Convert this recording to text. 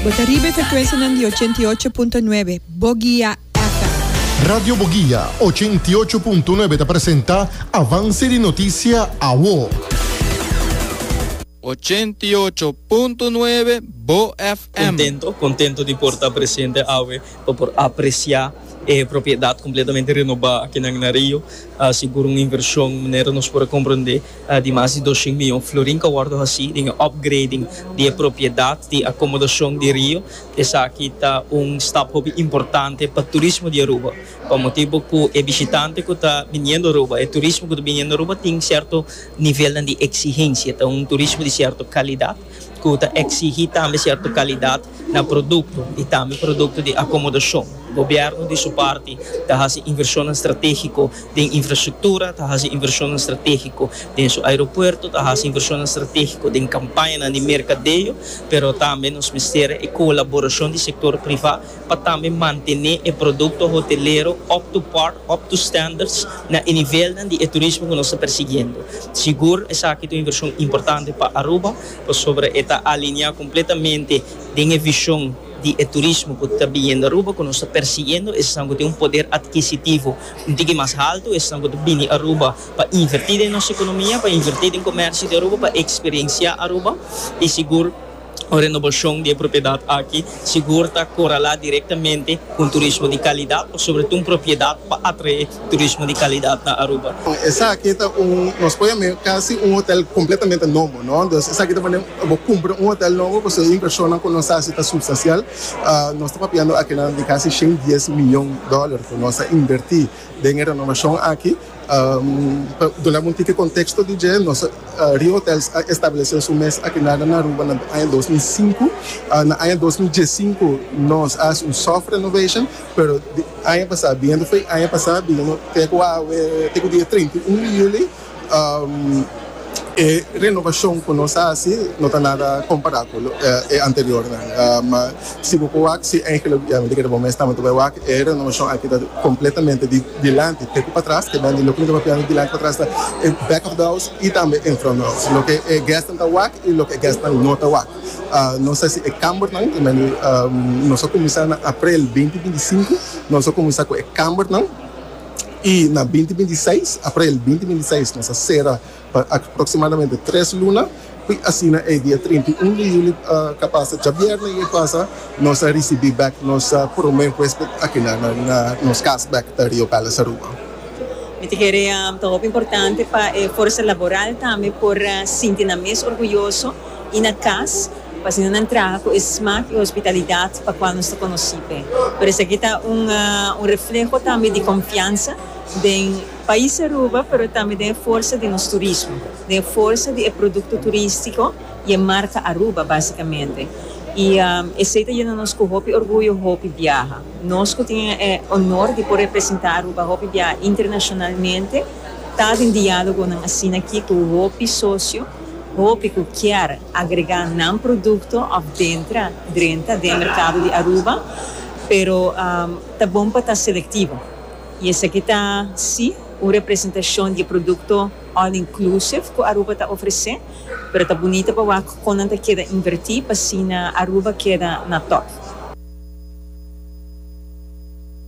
Bo ta riba e frekuensianan di ochenta i ocho punto nuebe, Boguia FM. Radio Boguia ochenta i ocho punto nuebe ta presenta Avance di Noticia Awo. Ochenta i ocho punto nuebe, Bo FM. Contento, contento di por ta presente awe pa por aprecia e propiedad completamente renoba aki nan na Rio. Sigur un inversion manera nos por a comprende. Di mas di dos shin mion florin ta wòrdu hasí den e opgrading di e propiedat di akomodashon di Rio. Esaki ta un stap hopi importante pa turismo di Aruba, pa motibu ku e bishitante ku ta biniendo Aruba, e turismo ku ta biniendo Aruba tin sierto nivelnan di eksigensia. Ta un turismo di sierto kalidat ku ta eksihí tambe sierto kalidat. na produkto i tambe produkto di akomodashon. Gobièrnu di su parti ta hasi invershonnan stratégiko den infrastruktura, ta hasi invershonnan stratégiko den su aeropuerto, ta hasi invershonnan stratégiko den kampañanan di merkadeo, pero tambe nos mester e kolaborashon di sektor privá pa tambe mantené e produkto hotelero up to par, up to standards, na e nivelnan di e turismo ku nos ta persigiendo. Sigur esaki ta un invershon importante pa Aruba. pasobra e ta alineá kompletamente den e vishon di e turismo ku ta biniendo Aruba, ku nos ta persigiendo esnan ku tin un poder adkisitivo un tiki mas haltu, esnan ku ta bini Aruba pa invertí den nos ekonomia, pa invertí den komèrsio di Aruba, pa eksperensiá Aruba i sigur un renoboshon di e propiedat aki. Sigur ta koralá direktamente ku un turismo di kalidat o sobre ta un propiedat pa atraé turismo di kalidat na Aruba. Esaki ta un, nos pone mi kasi un hotel kompletamente nobo, no. Entos esaki ta pone bo kumpra un hotel nobo pasobra e invershonnan ku nos hasi ta supstansial. Nos ta papiando akinan di kasi shen dies miyon dòler ku nos a invertí den e renovashon aki. Pa duna bo un tiki konteksto di dje, nos Rio Hotels a establesé su mes aki nan na Aruba na aña dos mil sinku. Na aña dos mil diesinku nos a hasi un soft renovation, pero di aña pasá biendo fue aña pasá biendo te ku awe te ku dia treinta i un di yuli. E renobashon ku nos a hasi no ta nada kompará ku e anteriornan. Ma si bo por wak si Angel a biaha, mi ta kere bo mester tambe ta bai wak. E renobashon aki ta kompletamente di dilanti te ku patras. Te bende loke mi ta papiando dilanti ku patras ta e back of the house i tambe en front of the house. Loke e guestnan ta wak i loke e guestnan no ta wak. Nos a hasi e kambernan, te bende nos a kuminsá na aprel binti binti sinku. Nos a kuminsá ku e kambernan. i na binti binti i seis, aprel binti binti i seis, nos a sera pa aproksimadamente tres luna, i asina e dia trinta i un di yuli ta pasa, djabièrnè i e pasa, nos a risibí bèk nos promé huésped akinan na nos kas bèk, ta Rio Palace Aruba. Mi ta kere ta hopi importante pa e forsa laboral tambe por sinti nan mes orguyoso. y na cas pa asina nan traha cu e smaak y hospitalidad pa cual nos ta conoci p'e. Por esaki ta un un refleho tambe di confiansa den pais Aruba pero tambe den e forsa di nos turismo, den e forsa di e producto turistico y e marca Aruba basicamente. Y esey ta yena nos cu hopi orguyo hopi biaha. Nos cu tin e honor di por representa Aruba hopi biaha internacionalmente ta den dialogonan asina aki cu hopi socio. Hopi cu kier agrega nan producto of dentra, drenta, den mercado di Aruba, pero ta bon pa ta selectivo. Y esaki ta, si, un representacion di e producto all inclusive cu Aruba ta ofrece, pero ta bunita pa wak con nan ta keda inverti pa asina Aruba keda na top.